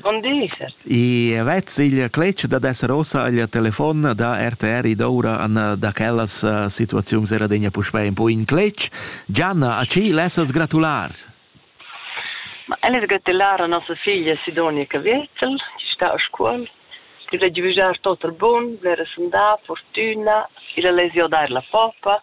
Bon di. I vezz il cletg dad esser ossa agl telefon da RTR ed oura an da quellas situaziuns era degna puspei un po in cletg. Gianna, a ci lessas gratular? Ma elles gratular a nossa figlia Sidonica Vettel, chi sta a scuol. Ti veggi vigiar tot er bun, blera sundà, fortuna, ir a lesio dair la poppa,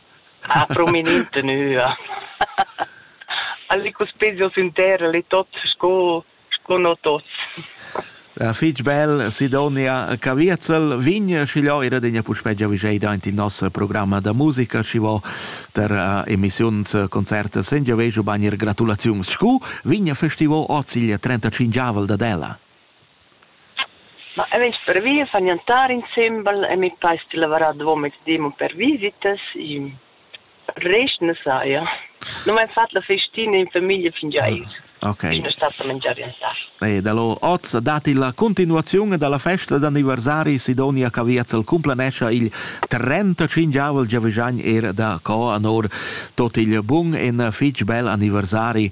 Ha prominent tenüa. Alle cuspegio sün terra le tot sco sco no tots. Ja, fich bel, Sidonia Caviezel, vin schigliò era degna puspè giavischeida aint il nos programma da musica, schi vo der uh, emissiuns, concerts, sengia vejo bagner gratulaziuns. Scu vin festivo hoz il 35avel da Della? Ma eu vegn pervi a far gnantar insembel e meis pais sti lavarar davo mezdi mo per visitas. Rest na saja. Nu m'hain fat la festina in famiglia fingià eir. Okay. Sun stat da mangiar gnantar. E da lo hoz dat illa cuntinuaziun dalla festa d'anniversari Sidonia Caviazzel cumplanescha il 35 giavüschagn eir da co anor tot il bun e fich bel anniversari